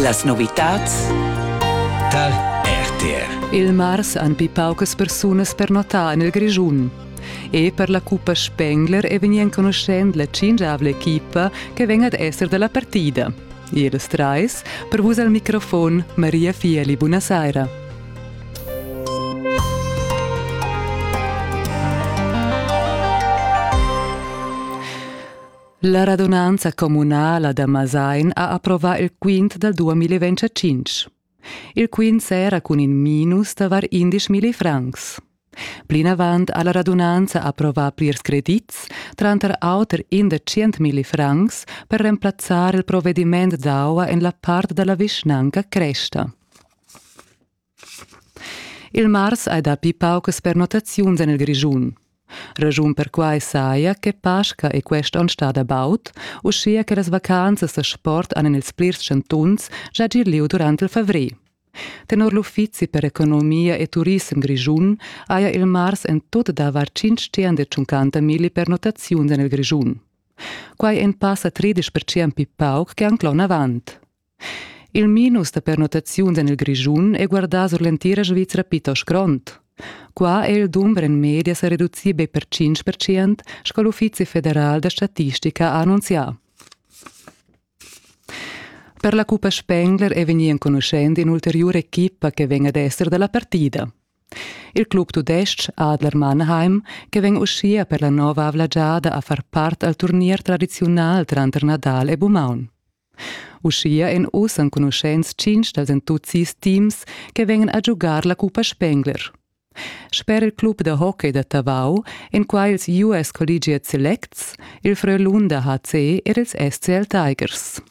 Las novitads tar RTR. Il mars han pli paucas persunas pernotà en il Grischun. E per la cuppa Spengler è vegnì enconuschent la tschintgavla equipa che vegn ad esser da la partida. Ils trais, per vus al microfon Maria Fieli, buonasera. La radunanza communala da Masain ha approvà il quint dal 2025. Il quint s'era cun in minus da var 11.000 francs. Plinavant ha la radunanza approvà plirs credits, tranter auter in da 100.000 francs, per remplazzar il provvediment d'aua en la part da la vischnanca Cresta. Il mars hai dapi paucas pernottaziuns en il Grischun. Raschun perquai saja che Pasca è quest onn stada baud, uschia che las vacanzas da sport han en ils plirs chantuns già gì lieu durant il favrer. Tenor l'Uffizi per economia e turissem Grischun haja il mars en tut davar 550 milli pernottaziuns en il Grischun. Quai è in pass a 13% pli pauc che anc l'onn avant. Il minus da pernottaziuns en il Grischun è guardà sur l'entira Svizra plitost grond. Qua è il dumber en media sa reducì be per 5 percent, sco l'Uffizi federal da statistica ha annunzià. Per la Cuppa Spengler è vegnì enconuschent in'ulteriura equipa che vegn ad esser da la partida. Il club tudestg Adler Mannheim, che vegn uschia per la nova avla giada a far part al turnier tradiziunal tranter Nadal e Bumaun. Uschia èn oz enconuschents tschintg dals en tut sis teams che vegnan a giugar la cuppa Spengler. Sper il club da hockey da Tavau èn qua ils US Collegiate Selects, il Frölunda HC ed ils SCL Tigers.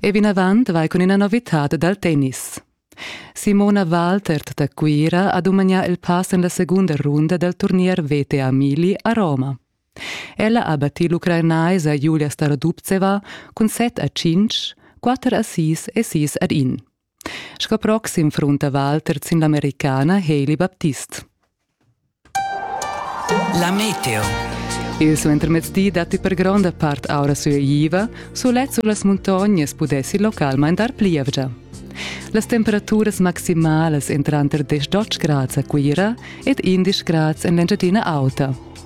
E vinavant vai cun ina novitad dal tennis. Simona Waltert da Cuira ha dumagnà il pass en la segunda runda dal turnier VTA Mili a Roma. Ella ha battì l'ucrainaisa Julia Starodubtseva cun set a tschintg, quatter a sis e sis ad in. Sco proxim frunta Walter sin l'Americana Hailey Baptist. La meteo. Il suentermezdi datti per gronda part aura sueiva, sulet sulas muntognas pudessi local maindar plievgia. Las temperaturas maximalas entran tranter 10 grads a Cuira ed 11 grads en l'Engiadina Auta.